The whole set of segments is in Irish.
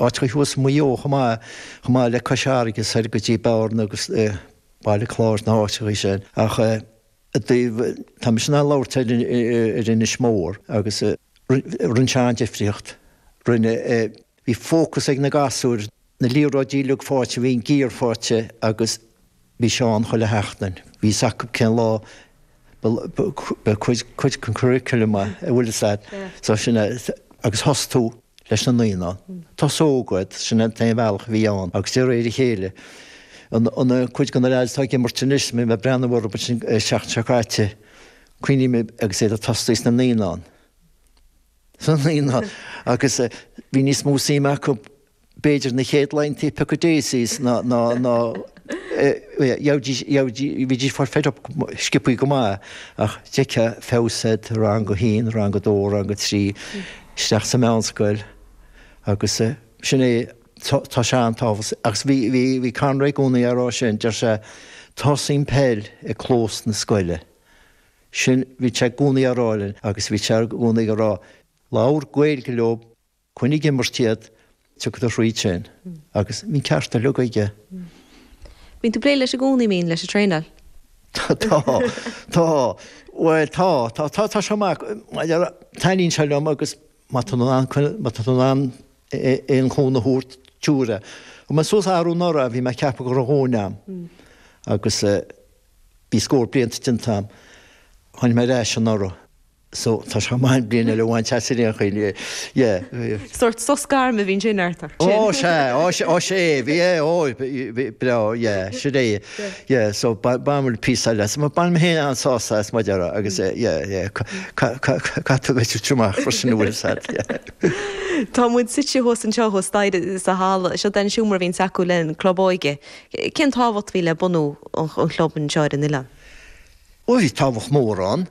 áiteachaí thuas Maigh Eo chomh maith, chomh maith le Cois Fharraige soir go dtí Bearna agus Baile Chláir, na háiteachaí sin. Ach i dtaobh, tá mise in ann labhairt ar Inis Mór agus rinne sé an-difríocht, rinne, bhí fócas ag na gasúir, na liathróidí uilig faighte, bhí an gear faighte agus, Bhí sé ann chuile sheachtain. Bhí fhios acu cén lá ba chuid den curriculum a bhfuil fhios a'd. So sin é. Agus thosaigh tú leis na naíonáin. Tosú óg, sin an t-aon bhealach a bhí ann. Agus de réir a chéile, an cuid de na lads atá ag imirt anois, bhí mé ag breathnú orthu ansin an tseachtain seo caite, cuimhním agus iad ag tosaí sna naíonáin. Sna naíonáin. Agus bhí níos mó suim acu. b'fhéidir na chéad laethanta ag piocadh daisies ná, ná, ná, eh, gheibhidís, gheibhidís, bhídís fed up, sciobtha go maith, ach d'fheicfeá feabhas air, rang a haon, rang a dó, rang a trí, isteach sa mheánscoil agus, eh, sin é, tá, tá sé an-tábhachtach. Agus bhí, bhí, bhí Conor i gcónaí á rá sin, deir sé, tosaíonn peil i gclós na scoile. Sin, bhí sé i gcónaí á rá linn agus bhí sé i gcónaí ag rá, labhair Gaeilge leo. Coinnigh ag imirt iad, tiocfaidh tú thríd sin agus bhí an ceart uilig aige. Bíonn tú ag plé leis i gcónaí, bíonn, leis an traenáil. Tá, tá, tá, bhuel tá, tá, tá, tá sé go maith, taitníonn sé liom agus má tá tú in ann, má tá tú in ann aon chúnamh a thabhairt, tabhair é. Chaith mé suas arú anuraidh, bhí mé ag ceapadh go raibh mo dhóthain a'm agus bhí scór blianta déanta a'm, tháinig mé ar ais anuraidh. So, tá súil a'm bliain eile a bhaint as ar aon chaoi, yeah. Sórt sos gairme a bhíonn sé in airt ort sin. Ó, sea, ó, sea, ó, sea, é, bhí, é, ó, bhí, breá, yeah, sure, é, yeah, so ba, b'amhail píosa eile as, baineann mé féin an-sásamh as muid orra agus, eh, yeah, yeah, ca, ca, ca, ca, cad tú ag feiceáil tríom amach freisin a bhfuil fhios a'd, yeah. Tá muid suite thuas anseo, thuas staighre sa halla. Seo é an seomra a bhíonns acu le haghaidh an club óige. Cén tábhacht a bhí le bunú an, an chlub anseo ar an oileán? Ó bhí tábhacht mhór ann,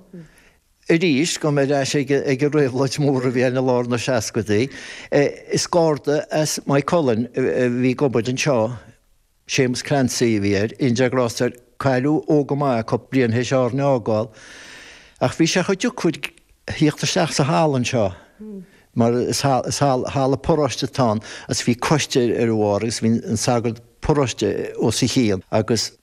arís, gabhfaidh mé ar ais ag an réabhlóid mhór a bhí ann i lár na seascaidí, is garda as Maigh Cuilinn a bhí ag obair anseo, Séamus Clancy a bhí air, go ndéana Dia grásta air, cailleadh óg go maith cúpla bliain théis Árainn a fhágáil, ach bhí sé chomh deacair a thíocht isteach sa halla anseo, mar is halla paróiste atá ann, agus bhí coiste ar a bharr agus bhí an sagart paróiste os a chionn agus.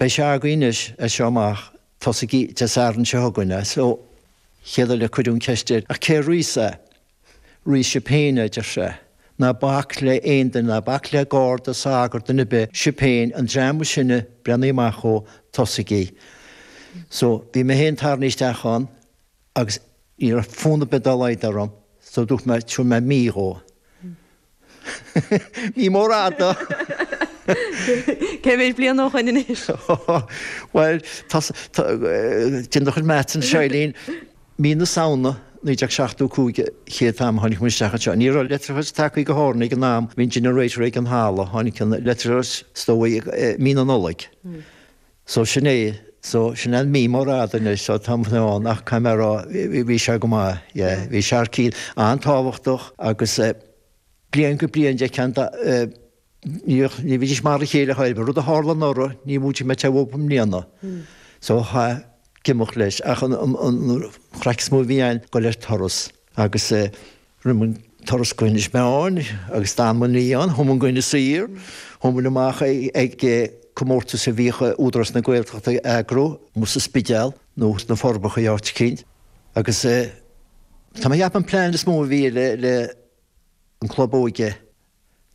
Beidh sé agaibh anois as seo amach, tosaigí Dé Sathairn seo chugainn, an chéad uair eile cuireadh an cheist air, ach cé a rithfeas é? Rithfidh sibh féin é, a deir sé. Ná bac le aon duine, ná bac le garda, sagart, duine ar bith, sibh féin, an dream is sine, breathnaigh amach dhó, tosaigí. So, bhí mé féin tarraingthe isteach ann. agus ní raibh fonn ar bith dá laghad orm so dúirt mé tabharfaidh mé mí dhó. Mí mhór fhada! Cé mhéid bliain ó shoin anois? Bhuel, tá sa, tá, déan do chuid maths ansin Eileen. Mí na Samhna 1975 an chéad am a tháinig muid isteach anseo. Ní raibh leictreachas tagtha go hÁrainn ag an am, bhí an generator ag an halla, tháinig an leictreachas is dóigh i mí na Nollag. So sin é, so sin an mhí mhór fhada anois, so tá mé ann ach caithfidh mé a rá, bhí sé go maith, yeah, bhí Sharkey an-tábhachtach agus bliain go bliain an dtuigeann tú, ní bhídís mar a chéile a thaobh, rud a tharla anuraidh ní móide go dtarlódh i mbliana, so chaithfeá imeacht leis ach an chraic is mó a bhí ann dul ar turas agus Rinne muid turas go hInis Meáin agus d'fhan muid oíche ann. Chuaigh muid go hInis Oírr. Chuaigh muid amach ag comórtas a bhíodh Údarás na Gaeltachta a eagrú, amuigh sa Spidéal nó sna Forbacha áit eicínt. Agus tá mé ag ceapadh an plean is mó a bhí leis an gclub óige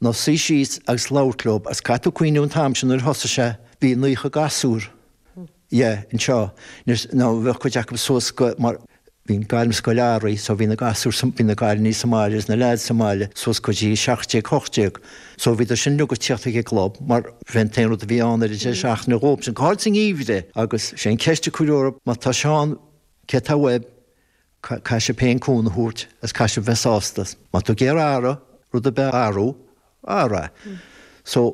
Ná suí síos agus labhairt leob is caithfidh tú cuimhniú an t-am sin nuair a thosaigh sé, bhí naocha gasúr, ie, anseo, nuair, nó bheadh cuid acu suas go, mar, bhí an ghairmscoil athraithe so bhí na gasúir sa, bhí na cailíní sa mbaile agus na leaids sa mbaile suas go dtí 17, 18 so bhíodar sin uilig ag tíocht ag an gclub mar bhí an t-aon rud a bhí ann ar an deireadh seachtaine dhóip sin go háirid sa ngeimhreadh agus sé an cheist a cuireadh orthu má tá sé ann, céard atá uaibh, caise féin cún a thabhairt as caise bheith sásta. Má tú géar earra, rud ar bith a earrú, earra é. So.